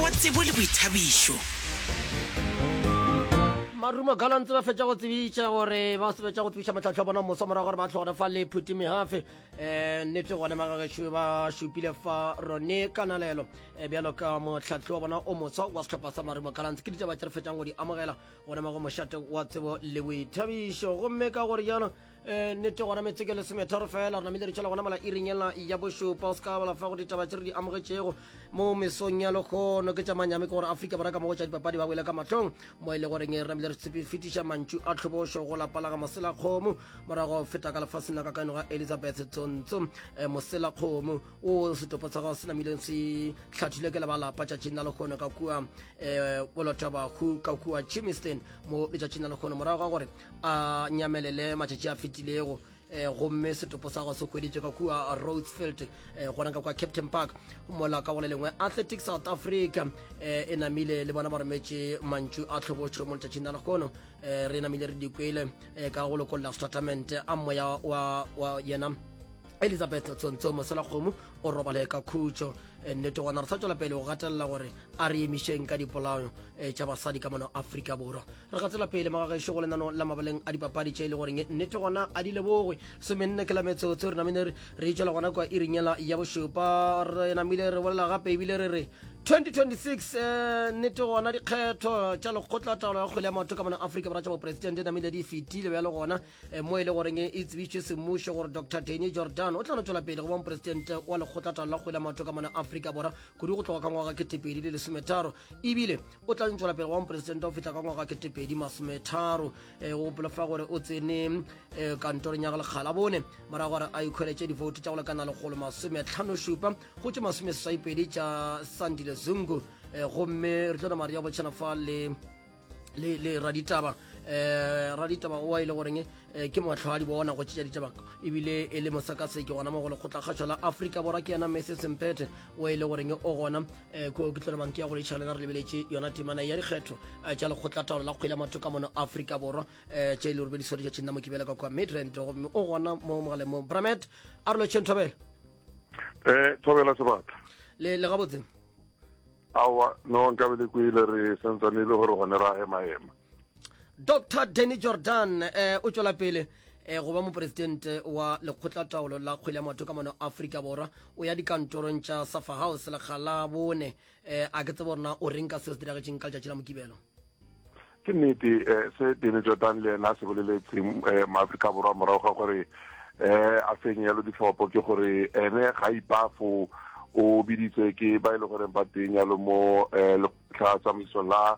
wa tsebo le boithabišo. Marumo Gallants ba fetša go tsebiša gore ba sebetša go tsebiša matlhatlho a bona moso morago gore ba tlhogone fa le phuti mehafe um nnete gone magagešo ba šupile fa rone kanalelo um bjalo ka motlhatlho wa bona o moso wa setlhopha sa marumo Gallants ke ditaba tse re fetšang go di amogela gone mago mošate wa tsebo le boithabišo gomme ka gore jalo Eh, nnete gona metse ke lesemetharo fela re namile re tšhela gona mola iring ela ya bošupa o se ka balafa go ditaba tse re di amogetšego mo mesong ya lekgono ke tša manyame ke gore aforika borwa ka mogo tša dipapadi ba boele ka matlhong mo e le goreng re namile re fetiša mantšu a tlhobošo go lapa la ga moselakgomo morago feta ka lefaseng la ka kaeno ga elizabeth tsontso eh, moselakgomo o setopo sa gago se namileng se tlhathile ke lebalapa tšatšing la lekgono ka kua um eh, bolotabahu ka kua chimiston mo letšatšing la lekgono morago ga gore a nyamelele matšatši a fetilego eh, gomme setopo sa go se hweditše ka kua roadsfield eh, gona ka kwa captain park mola ka gole lengwe athletic south africa eh, e namile le bona ba rometše mantšu a tlhobotšho mo letšatšing la legono eh, re namile re dikwele eh, ka go lokolla statement a moya wa, wa yena elizabeth tsontsong mosela kgomo o robale ka khutšo eh, nnete gona re sa tswela pele go gatelela gore a re emišeng ka dipolao eh, tša basadi ka mono aforika borwa re ga tsela pele magagešo go lenano la mabaleng a dipapadi tše e le goreng nnete gona a di lebogwe semenne ke la metsotso re namile re itšwela gona kwa irinyela ya bošupa re namile re bolela gape ebile re re 2026 eh, nnete gona dikgetho tša lekgotla taolo ya kgwele ya maoto ka mona afrika borwa tša boporesidente namile di fetile bjalo gona eh, mo e le goreng e tsebišitše semmušo gore dr deni jordan o tla no tšwela pele go ba moporesidente wa lekgotla taolo la kgwele ya maoto ka mona afrika borwa kudu go tloga ka ngwaga ke tepedi le lesometharo ebile o tla ntšwela pele wa moporesitente o fihla ka ngwaga ketepedi masometharo eh, go gopola fa gore o tsene eh, kantorong ya go lekgala bone morago gore a ikgweletše divoutu tša go lekana legolo masometlhano šupa go tše masome seswaipedi tša sandile zungu eh, gomme re tlo namare ya botšhana fa le le le raditaba eh raditaba o ile goreng eh, ke motlhwadi bona go tšea ditaba ebile e le mosakaseke gona mo go lekgotla kgašo la afrika borwa ke yena mese sempete o e le goreng o gona eh, ko ke tlolomang ke ya gore tšhalena re lebeletše yona temana ya dikgetho eh, tša lekgotlataolo la kgwele matho ka mono aforika borwa eh, tše e le robediso di tšatšeng la mokibela ka kwa midrand gomme o gona mo mogaleng mo bramet a re lotšheng thobela um thobela sebata le le gabotse awa no nkabe le kwele re santsane e le gore gone ra ema ema dr danny jordan eh, o tšwela pele eh, go ba moporesidente wa lekgotlataolo la kgwele ya maoto ka mono aforika borwa o ya dikantorong tša safa house lekga la bone eh, a ke tsebo gore na o reng ka seo se diragetseng ka letšatši la mokibelo ke nnete eh, se dene jordan le ena se boleletseng eh, maaforika borwa morago ga gore eh, a fenye yalo ditlhopho ke gore ene ga ipafo o biditswe ke ba e le goreng ba teng yalo mo eh, letlha tsamaiso la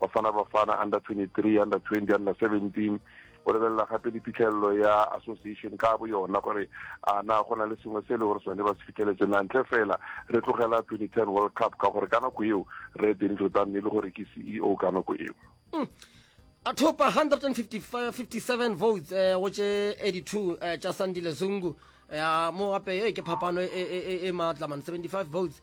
Bafana Bafana under 23 under 20 under 17 o lebelela gape le phitlhelelo ya association ka bo yona gore a na go na le sengwe se e le gore sone ba se fitlheletse na ntle fela re tlogela 2010 world cup ka gore ka nako eo re deni tlotan ne e le gore ke ceo ka nako eo mm. a thopa 157 votes eh, go tše 82 eh, tša sandile zungu eh, mo gape ke phapano e, e, e, e maatlaman 75 votes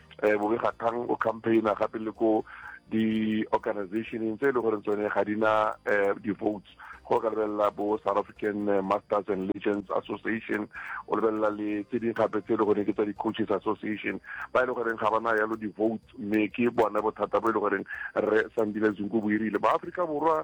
um bobegakgang o campaigna gape le ko di-organizationeng tse e le goreng tsone ga di na um di-votes go ka lebelela bo south african eh, masters and legends association o lebelela le tse ding gape tse e le goreng ke tsa di-coaches association ba e le goreng ga ba na yalo di-vote mme ke bona bothata bo e le goreng re sandile zunko boirile ba aforika borwa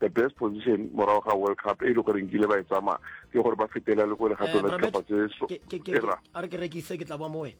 the best position morago ga world cup e le gore nkile ba e tsamaya ke gore ba fetela le ko legato la ditlhopha tse a re ke rekise ke tla boa mo wena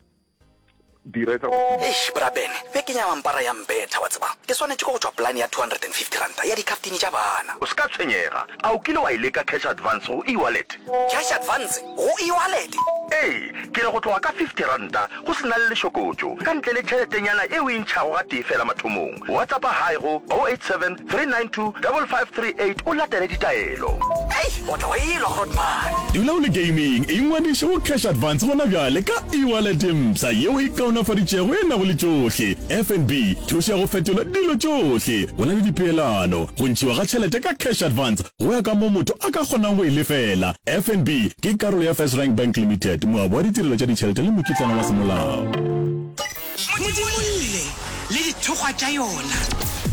dira etsa eish brabene be ke nyama mpara ya mbetha wa tseba ke swanetše ko go tšwa plan ya 250 ranta ya dikaptini tša bana o se ka tshwenyega a o kile wa e leka cash advance go e-wallet cash advance go e-wallet ee ke re go tloga ka 50 ranta Go se na le lešokotšo, ka ntle le tšheletenyana e o e ntšhago gatee feela mathomong. Whatsappa Hi go 0873925538 o latele ditaelo. Hei, o tlo elwa hot man. Dula o le gaming, ingwadiše go Cash Advance gona bjale ka e-wallet e mpsha yeo e kaonafaditšego e nago le tšohle, FNB, thušo ya go fetola dilo tšohle. O na le dipeelano, go ntšhiwa ga tšhelete ka Cash Advance, Go ya ka mo motho a ka kgonang go e lefela, FNB ke karolo ya First Rank Bank Limited, moabi wa ditirelo tša ditšhelete le mokitlana wa semolao. Modimo lle le dithokgwa tša yona.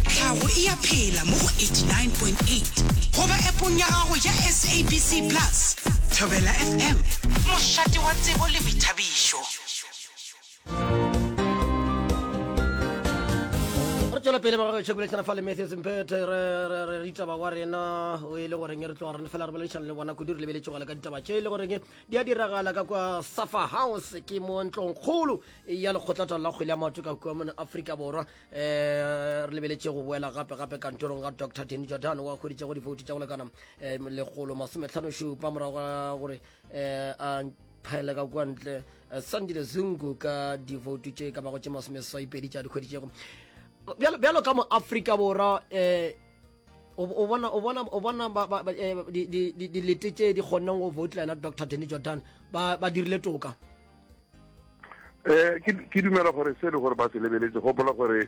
Tlhago e a phela mo go 89.8 goba appong ya gago ya SABC Plus. Thobela FM, mošate wa tsebo le boithabišo. re tšwela pele ba gagešo bolešana fa le matthews mpete re ditaba wa rena o e le goreng re tloga rene fela re boledišana le bona kudu re lebeletše gole ka ditaba tše e le goreng di a diragala ka kwa safa house ke mo ntlong kgolo ya lekgotlatalo la kgwele ya maoto ka kua mone aforika borwa um re lebeletše go boela gape gape kantorong ga dr deni jordan wa kgweditše go difouti tša go lekana um lekgolo masometlhano šupa morago ga gore um a phaele ka kwantle Eh, sandile zungu ka divoutu tše ka bago tše masomeswaipedi tša dikgwedi tšego bjalo ka mo afrika borwa eh, um o bona eh, dilete tše di kgonneng go voutla yena dr denny jordan ba dirile toka um ke dumela gore se e le gore ba se lebeletse gopola gore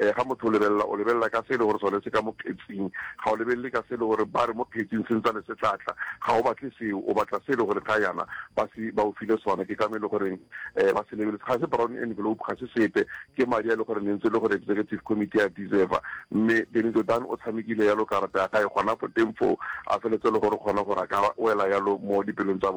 um ga motho o lebelela, o lebelela ka se e le gore sone se ka mo phetsing, ga o lebelele ka se e le gore ba re mo phetsing se ntsane se tla tla, ga o batle seo, o batla se e le gore ga yana ba se ba o file sona. Ke ka mo e le goreng um ba se lebeletse, ga se brown envelope, ga se sepe, ke madi a e le gore ne ntse e le gore executive committee a deserva, mme Benito Dan o tshamekile yalo karata ya gae gona fo teng foo, a feletse e le gore kgona gore a ka wela yalo mo dipelong tsa bona.